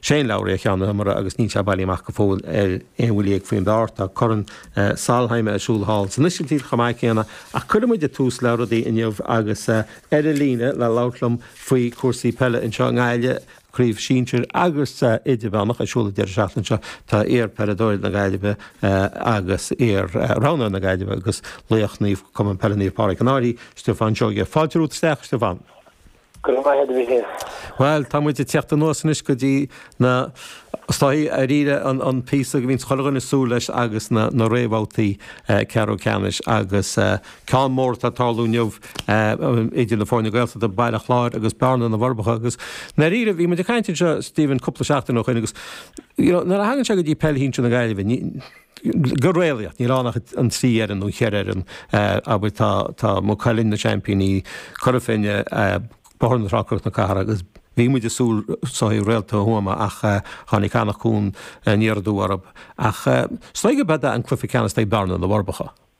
Shane Lowry, ceann na hiomaire agus níl sé bailithe amach go fóill ar aon bhuille dhéag faoin bpar. Tá Corn Solheim ar siúl thall san Ísiltír chomh maith céanna ach cuirfidh muid tús le rudaí inniu agus ar an líne le labhairt liom faoi chúrsaí peile anseo i nGaillimh, Craobh Sinsir agus Idirmheánach ar siúl an deireadh seachtaine seo. Tá iar-pheileadóir na Gaillimhe agus iar-roghnóir na Gaillimhe agus laoch Naomh Cumann Peile Naomh Pádraig An Fhairche, Stiofán Seoighe. Fáilte romhat isteach, Stiofán. Go raibh maith agat, a Mhichíl. Bhuel, tá muid ag teacht anuas anois go dtí na, is dóigh, dáiríre an píosa a mbíonns chuile dhuine ag súil leis agus na réamhbhabhtaí ceathrú ceannais agus ceann mór atá ag tarlú inniu idir na foirne Gaeltachta, Baile Chláir agus Bearna na bhForbacha agus i ndáiríre, bhí muid ag caint anseo, Stephen, cúpla seachtain ó shin agus, you know, nuair a thagann sé go dtí peil shinsir na Gaillimhe, ní. Go réalaíoch, níl ann ach an trí fhoireann nó cheithre fhoireann, abair, tá Maigh Cuilinn, na seaimpíní, Cora Finne, Bóthar na Trá, Cnoc na Cathrach agus bhí muid ag súil is dóigh Réalta Thuama ach tháinig Anach Cuain aniar aduaidh orthu. Ach is dóigh go b'eod é an cluiche ceannais ag Bearna na bhForbacha.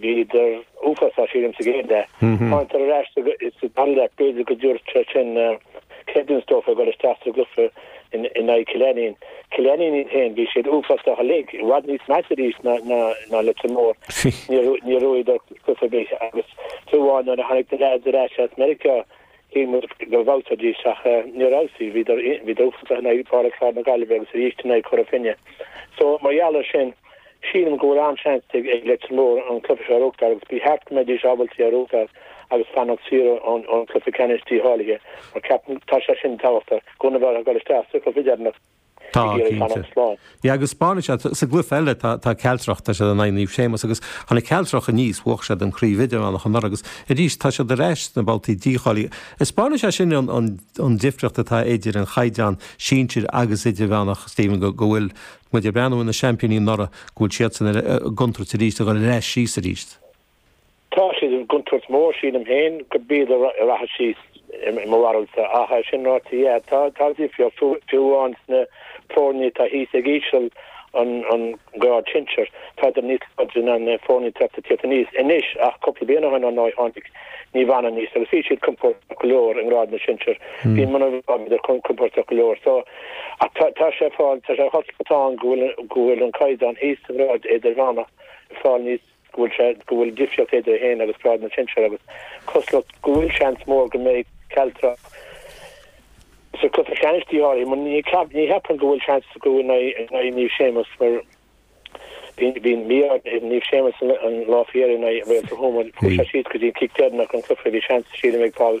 Bhíodar uafásach sílim sa gcéad leath. Thángadar ar ais sa dara leath. B'fhéidir go dtabharfadh sé sin creidiúint dóibh ag dul isteach sa gcluiche in aghaidh Chill Ainnín. Cill Ainnín iad féin, bhí siad uafásach uilig, i bhfad níos measa arís ná Leitir Móir. Níor ghnóthaíodar cluiche ar bith agus fiú amháin nuair a tháinig na leaids ar ais as Meiriceá, Shíl muid go bhfeabhsóidís ach níor fheabhsaigh. Bhíodar uafásach in aghaidh Bhaile Chláir na Gaillimhe agus arís in aghaidh Chora Finne. So, mar gheall air sin, sílim go bhfuil an-seans ag Leitir Móir an cluiche seo a ghnóthachtáil agus ba cheart go mbeidís ábalta é a ghnóthachtáil agus fanacht saor ón cluiche ceannais dícháilithe mar ceapaim tá sé sin tábhachtach gan a bheith ag gabháil isteach sa chluiche deireanach. Tá, cinnte. Agus spáineann sé sa gcluiche eile, tá Cealtrach, tá siad in aghaidh Naomh Séamas agus tháinig Cealtrach aníos, bhuach siad an chraobh idirmheánach anuraidh agus arís tá siad ar ais sna babhtaí dícháilithe. Spáineann sé sin an difríocht atá idir an chaighdeán sinsir agus idirmheánach, Stephen, go bhfuil muid ag breathnú ar na seaimpíní anuraidh, go bhfuil siadsan i gcontúirt arís, ag dul ar ais síos arís. Tá siad i gcontúirt mhór, sílim féin, go b'iad a rachadh síos i mo bharúilse, ach é sin ráite, yeah, tá, tá difríocht, fiú, fiú amháin sna foirní atá thíos ag íseal an, an grád sinsear. Tádar níos láidre ná na foirní atá tar éis tíocht aníos anois, ach cúpla bliain ó shin, ar ndóigh, tháinig Naomh Anna aníos agus bhí siad compóirteach go leor i ngrád na sinsear. Bhí Muine Mheá, bhíodar compóirteach go leor. So, ach tá, tá sé ag fáil, tá sé ag taispeáint go bhfuil, go bhfuil an caighdeán thíos sa ghrád idirmheánach ag fáil níos, go bhfuil sé, go bhfuil difríocht idir é féin agus Grád na Sinsear agus cosúlacht, go bhfuil seans mór go mbeidh Cealtrach sa cluiche ceannais dícháilithe, mar ní cheapaim go bhfuil seans acu in aghaidh Naomh Séamas, mar bhí an mí-ádh ar Naomh Séamas an lá faoi dheireadh in aghaidh Réalta Thuama, chuaigh sé síos go dtí an cic deireanach an cluiche, bhí seans, sílim, ag Paul.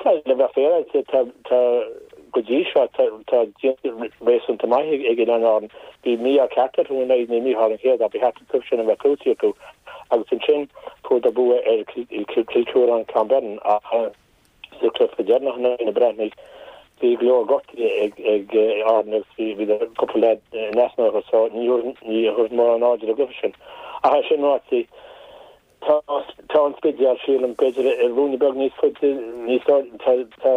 Tá le bheith féaráilte, tá, tá, go dtí seo, tá, tá déanta réasúnta maith ag, ag Oileáin Árann. Bhí mí-ádh ceart orthu in aghaidh Naomh Mícheál an chéad, ba cheart an cluiche sin a bheith gnóthaithe acu agus ansin fuadar bua ar Kilkerrin Clonberne ach sa chluiche deireanach in aghaidh na Breathnaigh bhí go leor gortuithe ag, ag Árann agus bhí, bhí cúpla leaid in easnamh orthu so ní, ní thabharfainn mórán airde don gcluiche sin. Ach é sin ráite, Tá tá an Spidéal, sílim, b'fhéidir ruainne beag níos faide, níos lú, tá tá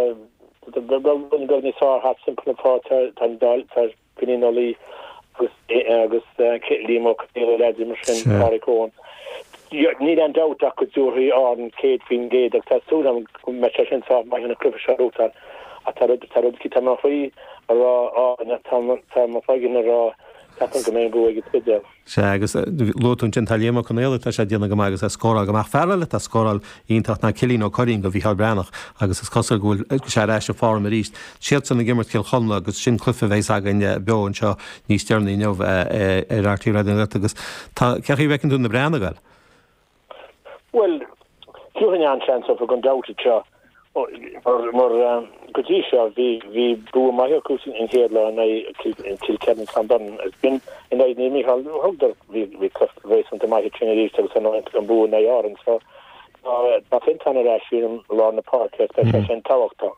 tá beag beag ruainne beag níos fearr thart timpeall an pháirc, tá tá an Dáil, tá Finín Ó Laoi agus agus eh Liam Ó Conghaile is leaids mar sin, Sea. Pádraig Eoin. Níl aon dabht ach go dtabharfaidh Árann 100% agus tá súil agam go mbeidh sé sin sách maith leis an gcluiche seo a ghnóthachtáil ach tá rud tá rud eicínt, tá mo chroí ag rá Árann ach tá mo tá mo chloigeann ag rá ceapaim go mbeidh an bua ag an Spidéal. Sea, agus luaigh tú ansin, tá Liam Ó Conghaile, tá sé ag déanamh go maith agus é ag scóráil go maith. Fear eile atá ag scóráil iontach ná Cillian Ó Curraoin do Mhicheál Breathnach agus is cosúil go bhfuil sé ar ais i bhform arís. Siadsan ag imirt Chill Chonla agus sin cluiche a bheas againn beo anseo níos deireanaí inniu ar RTÉ Raidió na Gaeltachta agus tá, cén chaoi a bhfeiceann tú na Breathnaigh? Bhuel, thabharfainn an-seans dóibh an babhta seo, mar go dtí seo, bhí bua maith acu an chéad lá in aghaidh Kilkerrin Clonberne. Is ansin in aghaidh Naomh Mícheál thugadar, bhí cluiche réasúnta maith ansin arís agus an bua in aghaidh Árann. So, tá Fiontán ar ais i lár na páirce, is beidh sé sin tábhachtach.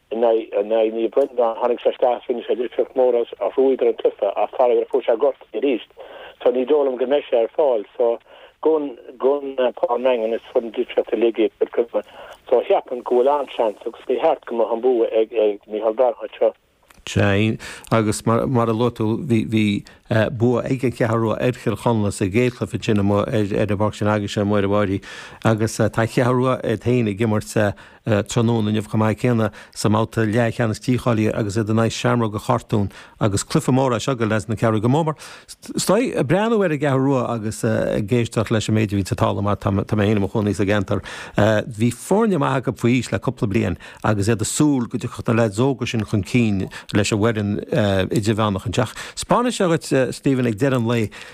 In aghaidh Naomh Breandáin, tháinig sé isteach is rinne sé difríocht mhór a thrúig ar an gcluiche ach tharla gur fuair sé gortaithe arís so ní dóigh liom go mbeidh sé ar fáil so gabhann Pá an Daingin is fuair na litreacha uilig iad go cuma so ceapaim go bhfuil an-seans agus ba cheart go mbeadh an bua ag Micheál Breathnach anseo. Sea, agus mar a luaigh tú, bhí bua ag An Cheathrú Rua ar Chill Chonla sa gcéad chluiche ansin amuigh ar an bpáirc sin agaibhse ar an bhFairche, agus tá an Cheathrú Rua iad féin ag imirt sa tráthnóna inniu chomh maith céanna, sa mbabhta leathcheannais dícháilithe agus iad in aghaidh Sheamróga an Chartúin agus cluiche mór é seo do leaids na Ceathrún go mór mór, is dóigh, ag breathnú ar an gCeathrú Rua agus ag éisteacht leis an méid a bhíonns ar an talamh mar tá mé féin i mo chónaí sa gceantar. Bhí foirne maithe acu faoi aois le cúpla bliain agus iad ag súil go dtiocfadh na leaids óga sin chun cinn leis an bhfoireann idirmheánach anseo. Ach tá a fhios agat, Stephen, ag deireadh an lae.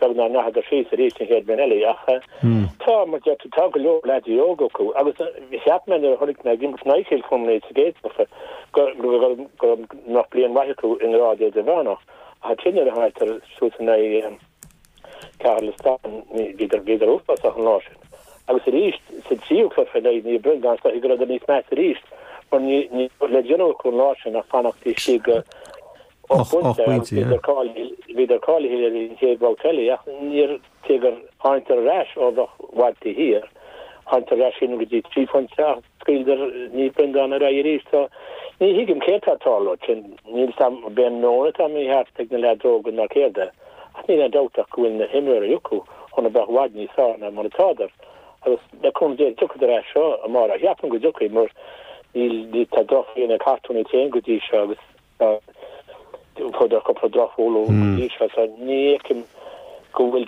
Beag nár ndeachadar síos arís an chéad bhliain eile, ach tá, mar a deirtear, tá go leor leadaí óga acu, agus cheap mé nuair a chonaic mé iad ag imirt in aghaidh Chill Chonla sa gcéad bhabtha go mbeadh bliain mhaith acu i ngrád idirmheánach, ach ansin nuair a thángadar suas in aghaidh Chathair Loistreáin, bhíodar uafásach an lá sin. Agus arís sa tríú cluiche in aghaidh Naomh Breandáin, is dóigh go raibh siad níos measa arís mar ní raibh le déanamh acu an lá sin ach fanacht istigh. Ocht bpointe, yeah. Bhíodar cáilithe le haghaidh an chéad bhabhta eile ach níor, cé gur tháinigdar ar ais ó bheith i bhfad taobh thiar, tháinigdar ar ais sin go dtí trí phointe ach scaoileadar Naomh Breandán ar aghaidh arís so ní thuigim céard tá ag tarlú ansin. Níl a fhios agam ab é an meon atá mícheart ag na leaids óga ná céard é ach níl aon dabht ach go bhfuil na himreoirí acu chun a bheith i bhfad níos fearr ná mar atádar agus le cúnamh Dé tiocfadar ar ais seo amárach. Cheapfainn go dtiocfaidh mar níl, tá drochbhliain ag Cartún iad féin go dtí seo agus Tá fuaireadar cúpla drochbhualadh go dtí seo so ní fheicim go bhfuil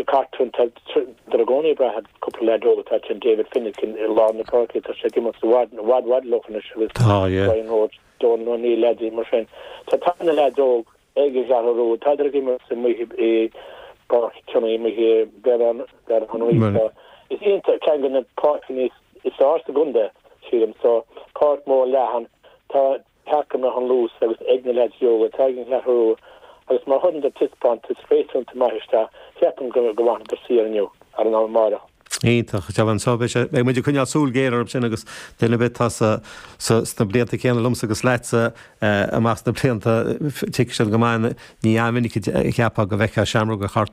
Cartún, tádar i gcónaí ag brath ar cúpla leaid óg atá tinn, David Finnegan i lár na páirce, tá sé ag imirt i bhfad, i bhfad, i bhfad leo anois agus Brian Roche, Dónal O'Neill, leadaí mar sin. So tá na leaids óg ag an gCeathrú Rua, tádar ag imirt i i bPáirc Tionain i mBré ar an ar an oíche seo. Is iontach ceann de na páirceanna is fearr sa gcontae, sílim so, páirc mhór leathan, tá Cheapfá go mbeadh an luas agus ag na leaids óga atá ag an gCeathrú Rua, agus má chuireann dar taispeántas réasúnta maith isteach, cheapfainn go bhfanfadar saor inniu, ar an amárach. Iontach. Deamhan anso, beidh sé, beidh muid ag coinneáil súil ghéar orthu sin agus duine ar bith atá sa, sa, sna blianta céanna liomsa agus leatsa, amach sna blianta, tuigfidh siad go maith, ní an-mhinic a cheapfá go bhfeictheá Seamróga Chartúin.